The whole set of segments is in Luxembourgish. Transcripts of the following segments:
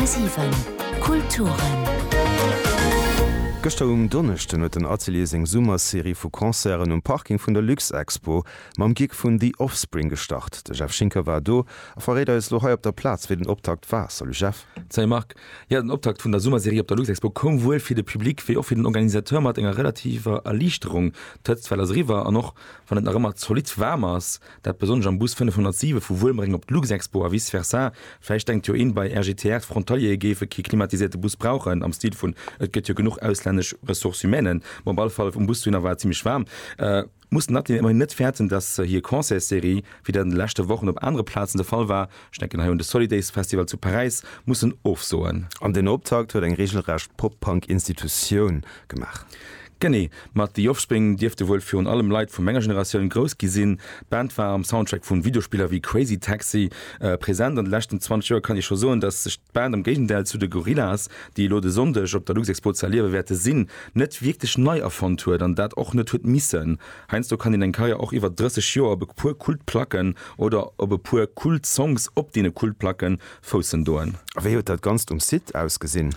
10,7 Kulturen. Gëschter um Donneschden huet den Atelier seng Summerserie vu Concerten um Parking vun der Luxexpo mam Gig vun The Offspring gestart. De Jeff Schinker war do a verréit eis lo hei op der Plaz wéi den Optakt war. Salut Jeff. Salut Marc. Jo, den Optakt vun der Summerserie op der Luxexpo koum wuel fir de Public wéi och fir den Organisateur mat enger relativer Erliichterung. D'Hëtzt well ass eriwwer an och wann et nach ëmmer zolidd waarm ass, Dat besonnesch am Bus 507 vu Wuelmréng op d'Luxexpo a vice versa. Vläicht denkt jo een, bei RGTR, d'Frontaliere géife kee klimatisierte Bus brauchen, am Stil vun et gëtt jo genuch auslännesch Ressources humaines. Bon, op alle Fall um Bus dohinner war et zimmlech waarm. Muss den Atelier ëmmerhin net fäerten, dass hir Concertsserie, wéi dat an de leschte Wochen op anere Plazen de Fall war, ech denken hei un de Solidays Festival zu Paräis, mussen ofsoen. An den Optakt huet eng reegelrecht Pop-Punk-Institutioun gemaach. Genee, mat The Offspring dierfte wuel virun allem Leit vu menger Generatioun grouss gi sinn. D'Band war am Soundtrack vu Videospiller wéi Crazy Taxi present. An de leschten 20 Joer kann ee scho soen, datt sech d'Band, am Géigendäll zu de Gorillaz, déi elo de Sonndeg op der Luxexpo ze erliewe wäerte sinn, net wierklech nei erfonnt huet an dat och net huet missen. Heiansdo kann een eng Karriär och iwwer 30 Joer op e puer Kultplacken oder op e puer Kultsongs op deene Kultplacke foussen doen. A wéi huet dat Ganzt um Site ausgesinn?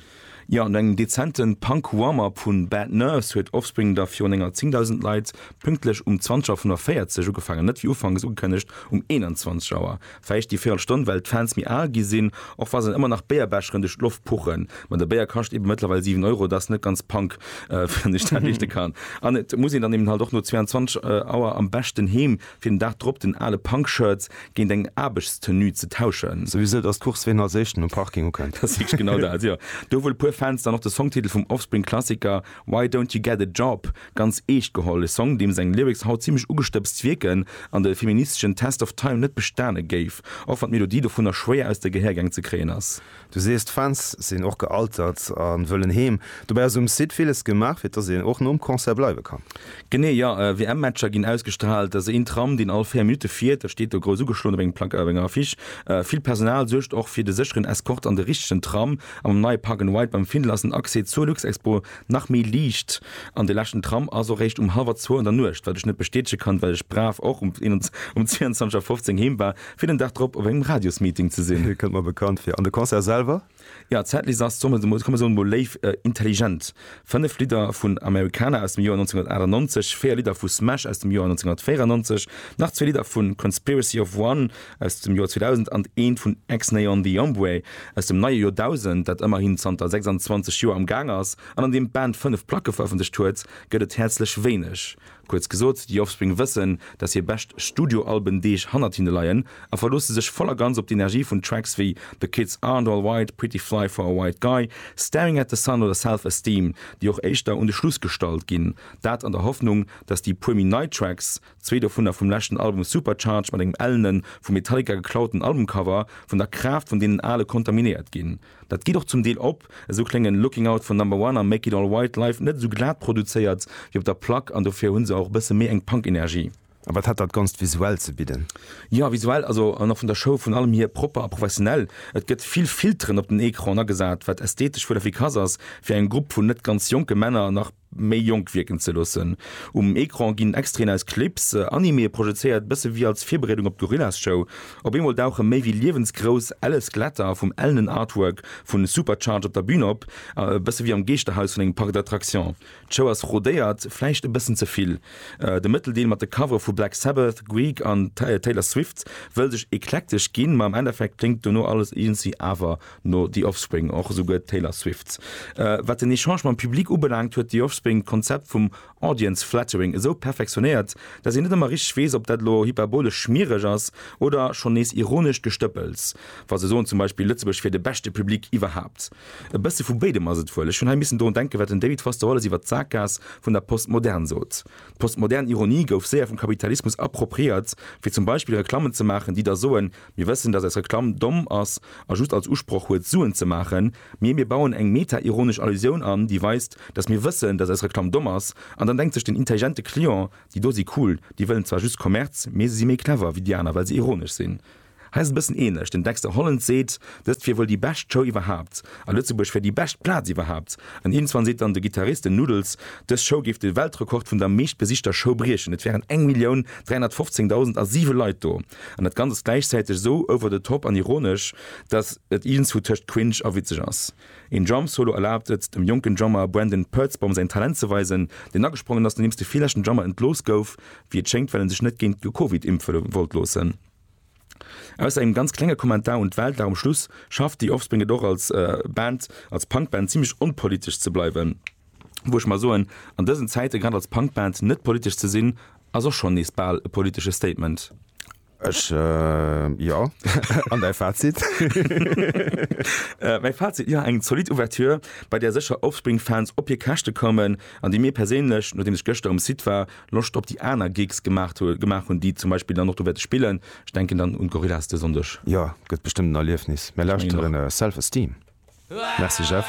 Jo, no engem dezente Punk-Warm-Up vu Bad Nerves huet Offspring da virun enger 10.000 Leit pünktlech um 20 Auer 45 ugefaangen, net wéi ufanks ugekënnegt um 21 Auer. Vläicht déi véirel Stonn, well d'Fans méi al gi sinn, och wa se dann ëmmer nach Béierbecheren duerch d'Loft puchen. Ma de Béier kascht ebe mëttlerweil 7 Euro, et ass net ganz Punk, wann ech dat riichte kann. An et muss een dann eben halt och no 22 Auer am beschten heem fir den Dag drop den ale Punk-Shirt géint eng Aarbechtstenue ze tauschen. Souwisou, dass d'Course ween als éischten um Parking ukënnt. Dat ass wierklech genau dat, jo. Do hu wuel e puer Fans dann och de Songtitel vum Offspring-Klassiker Why Don't You Get A Job ganz eescht geholl, e Song, deem seng Lyrics haut zimlech ugestëbst wierken an de feministeschen Test of Time net bestane géif, och wann d'Melodie dovunner schwéier aus de Gehäergäng ze kréien ass. Du sees, d'Fans sinn och gealtert a wëllen heem. Dobäi ass um Site villes gemaach, fir dass een och nom Concert bleiwe kann. Genee, jo. WM-Matcher ginn ausgestraalt. Et ass een Tram, deen all véier Minutte fiert. Dat steet do grouss ugeschloen op engem Plakat, op enger Affiche. Vill Personal suergt och fir de sécheren Eskort an de richtegen Tram. A mam neie Park and Ride beim Findel ass den Accès zur Luxexpo nach méi liicht. An de leschten Tram ass och réischt um hallwer zwou an der Nuecht, wat ech net bestätege kann, well ech brav och um 22.15 Auer heem war. Fir den Dag drop op engem Radiosmeeting ze sinn. Kënnt mer bekannt fir. An de Concert selwer? Jo, d'Setlist ass, solle mer mol, komm mer soe mol léif, intelligent. Fënnef Lidder vun Americana aus dem Joer 1998, véier Lidder vu Smash aus dem Joer 1994, nach zwee Lidder vu Conspiracy of One aus dem Joer 2000 an eent vun Xnay On The Hombre aus dem neie Joerdausend, dat ëmmerhin zanter 26 Joer am Gaang ass an an deem d'Band fënnef Placke verëffentlecht huet, gëtt et häerzlech wéineg. Kuerz gesot, The Offspring wëssen, dass hir bescht Studioalben-Deeg hannert hinne leien a verloosse sech voll a ganz op d'Energie vun Tracks wéi The Kids Aren't All White, Pretty Fly for a White Guy, Staring at the Sun oder Self Esteem, déi och éischter un de Schluss gestallt ginn. Dat an der Hoffnung, dass déi puer méi nei Tracks, zwee dovunner vum leschten Album Supercharged mat engem ellene vum Metallica geklauten Albumcover, vun der Kraaft vun deenen ale kontaminéiert ginn. Dat geet och zum Deel op, esou kléngen Looking Out vun Number One a Make It All White live net esou glat produzéiert wéi op der Plack an dofir hunn se och e bësse méi eng Punk-Energie. A wat hat dat Ganzt visuell ze bidden? Jo, visuell also an och vun der Show vun allem hier propper a professionell. Et gëtt vill Filteren op den Ecran agesat, wat ästhetesch wuel efficace ass fir engem Grupp vun net ganz jonke Männer nach. méi jonk wierken ze loossen. Um Ecran ginn Extraiten aus Clips, Animee projezéiert, bësse wéi als Virbereedung op d'Gorillaz-Show. Op eemol dauche méi wéi liewensgrouss elle Skeletter vum ellenen Artwork vu Supercharge op der Bün op, bësse wéi am Geeschterhaus vun engem Parc d'attractions. D'Show ass rodéiert, vläicht e bëssen ze vill. De Mëtteldeel mat de Covere vu Black Sabbath, Guig an Taylor Swift wëll sech eklektesch ginn, ma am Endeffekt kléngt dono alles iergendwéi awer No The Offspring och esouguer d'Taylor Swift. Wat den Echange mam Public ubelaangt, huet The Offspring d'Konzept vum Audience Flattering esou perfektionéiert, dass een net ëmmer richteg weess, ob dat elo hyperbolesch schmiereg ass oder schonn nees ironescht Gestëppels, wa se soen zum Beispill, Lëtzebuerg wier de beschte Public iwwerhaapt. E bësse vu béidem ass et wuel. Ech hunn hei missen drun denken, wat den David Foster Wallace iwwert d'Sakgaass vun der Postmodern sot. D'postmodern Ironie gouf séier vum Kapitalismus appropriéiert, fir zum Beispill Reklammen ze maachen, déi da soen, Mir wëssen, dass eis Reklamm domm ass a just als Usproch huet, Suen ze maachen, mee mir bauen eng meta-ironesch Allusioun an, déi weist, dass mir wëssen, dass eis Reklamm domm ass. An dann denkt sech den intelligente Client, Déi do si cool, déi wëllen zwar just Kommerz, mee se si méi clever wéi déi aner, well se ironesch sinn. Hei ass et e bëssen ähnlech. Den Dexter Holland seet, dëst wier wuel déi bescht Show iwwerhaapt a Lëtzebuerg wär déi bescht Plaz iwwerhaapt. An iergendzwann seet dann de Gittarist, den Noodles, dës Show géif de Weltrekord vun der meeschtbesichter Show briechen, et wären 'eng Millioun 315 dausend a siwe Leit do'. An dat Ganzt ass gläichzäiteg esou over the top an ironesch, datt et iergendwou tëscht cringe a witzeg ass. Een Drum-Solo erlaabt et dem jonken Drummer Brandon Purtzbaum säin Talent ze weisen, deen agesprongen ass nodeems de villeschten Drummer entlooss gouf, wéi et schéngt well en sech net géint d'Covid impfe wollt loossen. Ausser engem ganz klenge Kommentar un d'Welt war um Schluss schafft The Offspring et och als Band, als Punk-Band zimmlech onpolitesch ze bleiwen. Wou ech mer soen, an dësen Zäite grad als Punk-Band net politesch ze sinn Ass och schonn nees bal e politesche Statement. Ech, jo. An däi Fazit? Mäi Fazit, jo, eng zolidd Ouverture, bei där sécher Offspring-Fans op hir Käschte kommen an déi mir perséinlech, nodeems ech gëschter um Site war, Loscht op déi aner Gigs gemaach hunn, déi zum Beispill dann och do wäerte spillen. Ech denken dann un d'Gorillaz de Sonndeg. Jo, gëtt bestëmmt en Erliefnis. Mir lauschteren Self Esteem. Merci Jeff.